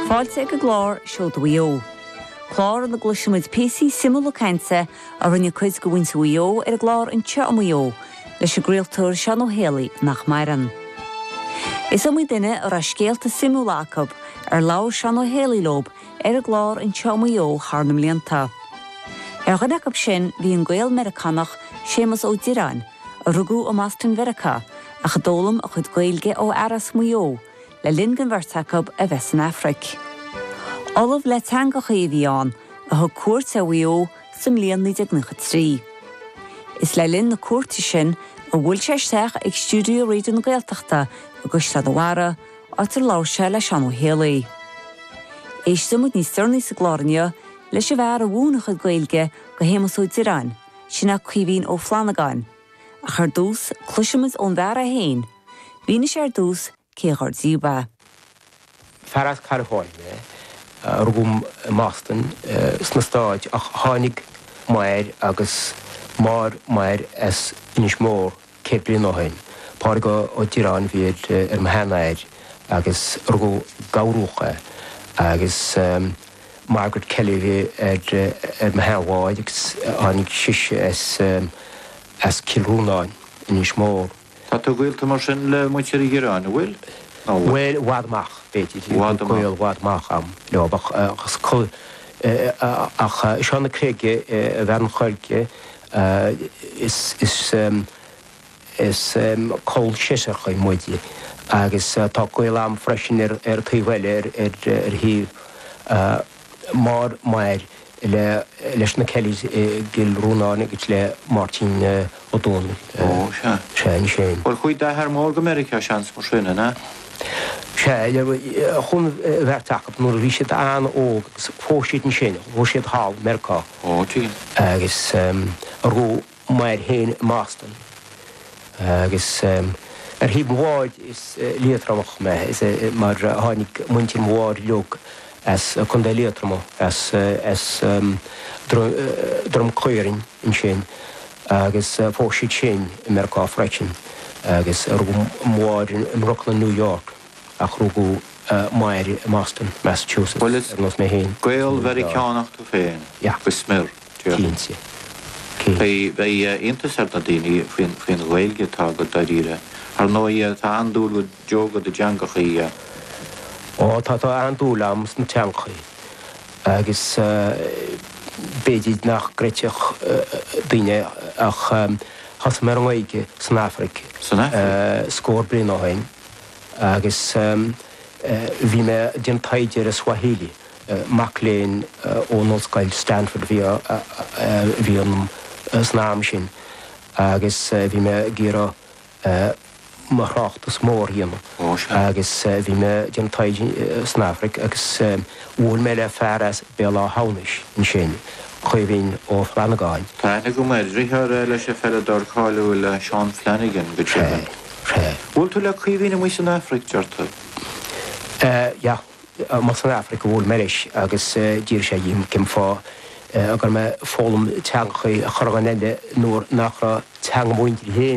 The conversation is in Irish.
Fáilte ag an gclár Seoda Mhaigh Eo, clár ina gcloisimid píosaí suimiúla cainte a rinne cuid de mhuintir Mhaigh Eo ar an gclár Anseo i Maigh Eo leis an gcraoltóir Seán Ó hÉalaí, nach maireann. Is iomaí duine a raibh scéalta suimiúla acu ar labhair Seán Ó hÉalaí leo ar an gclár Anseo i Maigh Eo thar na mblianta. Ar dhuine acu sin bhí an Gael-Meiriceánach Séamus Ó Direáin, a rugadh i mBoston Mheiriceá ach a d'fhoghlaim a chuid Gaeilge ó fhear as Maigh Eo le linn don bheirt acu a bheith san Afraic. Ollamh le teangachaí a bhí ann a thug cuairt ar Mhaigh Eo sa mbliain 1993. Is le linn na cuairte sin a bhuail sé isteach ag stiúideo Raidió na Gaeltachta i gCaisleán a' Bharraigh, áit ar labhair sé le Seán Ó hÉalaí. Éistfimid níos deireanaí sa gclár inniu leis an bhfear a mhúin a chuid Gaeilge go hÉamas Ó Direáin, Sin é Caoimhín Ó Flannagáin. Ach ar dtús, cloisimid ón bhfear é féin. Mhínigh sé ar dtús cé dhár díobh é. Fear as California mé. Rugadh mé i mBoston sna Stáit, tháinig m'athair agus máthair m'athair as Inis Mór. Céad bliain ó shoin. Pádraig Ó Direáin a bhí ar mo sheanathair agus rugadh i nGort na gCapall é agus Margaret Kelly a bhí ar mo sheanmháthair agus tháinig sise as Cill Rónáin, Inis Mór. Tá tú gaolta mar sin le muintir Uí Dhireáin, an bhfuil? Bhuel, i bhfad amach, b'fhéidir. Bhí gaol i bhfad amach a'm leo ach Seosamh na Creige i bhFearann Choirce Is col seisearach muid agus tá gaol a'am freisin ar an taobh eile, ar thaobh máthair m'athar leis na Kellys i gCill Rónáin agus le Máirtín Ó Dónaill. Sea, anois é. Bhuel, chuaigh d'athair mór go Meiriceá seans mar sin, an ea? Sea, chuaigh an bheirt acub nuair a bhí siad an-óg agus phós siad ansin, phós siad thall, Meirceá. Agus rugadh m'athair féin i mBoston. Agus ar thaobh mo mháthar is Liatromach mé, mar tháinig muintir mo mháthar uilig as Contae Liatroma, as Droim Caorainn ansin agus phós siad sin i Meiriceá freisin. Agus rugadh mo mháthar i mBrooklyn, New York. ach rugadh m'athair i mBoston, Massachusetts, ar nós mé féin. Gael-Mheiriceánach tú féin go smior, cinnte. Beidh iontas ar na daoine faoin Ghaeilge atá agat, dáiríre. Ar ndóigh, tá an-dúil agat, ar ndóigh, agat i dteangachaí. Ó, tá an-dúil a'm sna teangachaí agus b'fhéidir nach gcreidfeadh daoine ach thosaigh mé ar an nGaeilge san Afraic scór bliain ó shin. Agus bhí mé ag déanamh taighde ar an Swahili. Mac léinn ón Ollscoil Stanford a bhí ionam san am sin agus bhí mé ag iarraidh mo thráchtas mór a dhéanamh. Agus bhí mé ag déanamh taighde san Afraic agus bhuail mé le fear as Béal Átha hAmhnais ansin, Caoimhín Ó Flannagáin. Thaitnigh go maith deartháir é leis an bpeileadóir cáiliúil Seán Flanagan go deimhin. Bhuail tú le Caoimhín amuigh san Afraic deir tú? Sea, amuigh san Afraic a bhuail mé leis agus d'fhiafraigh sé dhíom cén fáth go raibh mé ag foghlaim teangacha chuile dhuine eile nuair nach raibh teanga mo mhuintire féin